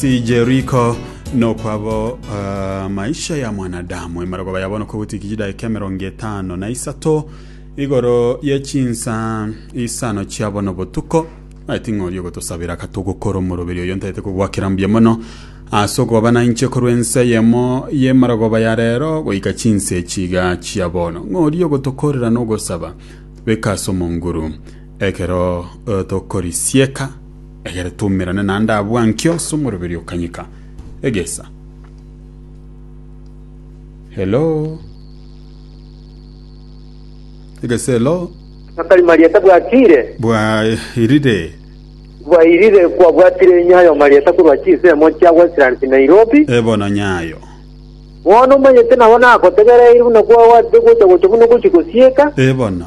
Si Jeriko nokwabo uh, maisha ya mwanadamu emarogoba yabo nokogutikiji daika emerongo etano na isato igoro ye chinsa isano chiabo nobotuko maeti ng'ori ogotosabira katogokora omoroberi oyo ntaete kogwakera mbuya mono ase okoba na inche korwa ense eyemo y'emarogoba ya rero goika chinsa echiga chia bono ng'ori ogotokorera nogosaba beka ase omonguru ekero eh, tokorisieka Egere toumerane naende abwo anki onsi omoroberi okanyika egesa. Hello. Egesa hello. Akari marieta bwakire, Bwairire. bwairire kwabwatire nyayo marieta korwa chisemo chia Westlands Nairobi. E bono nyayo. Bono omanyete nabo nakotegereire buna kwabwatete gocha gocha buna ogochi gosieka. E bono.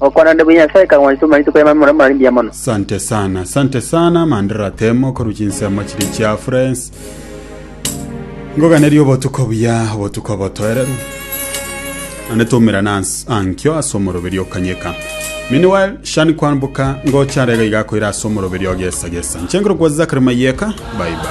Okwana onde buna Nyasae kang'wanso buna rituko ri'amang'ana morero marimbia mono. Sante sana, sante sana Mandera Temo korwa chinsemo chiria chia Friends. Ngoganeria obotuko buya, obotuko obotoereru. Ane tumirana ans- ankio ase omoroberi okanyeka. Meanwhile, Shani Kwambuka ngocha arega iga akoira ase omoroberi ogesa gesa. Nchengero kwa Zachary Mayeka. Bye bye.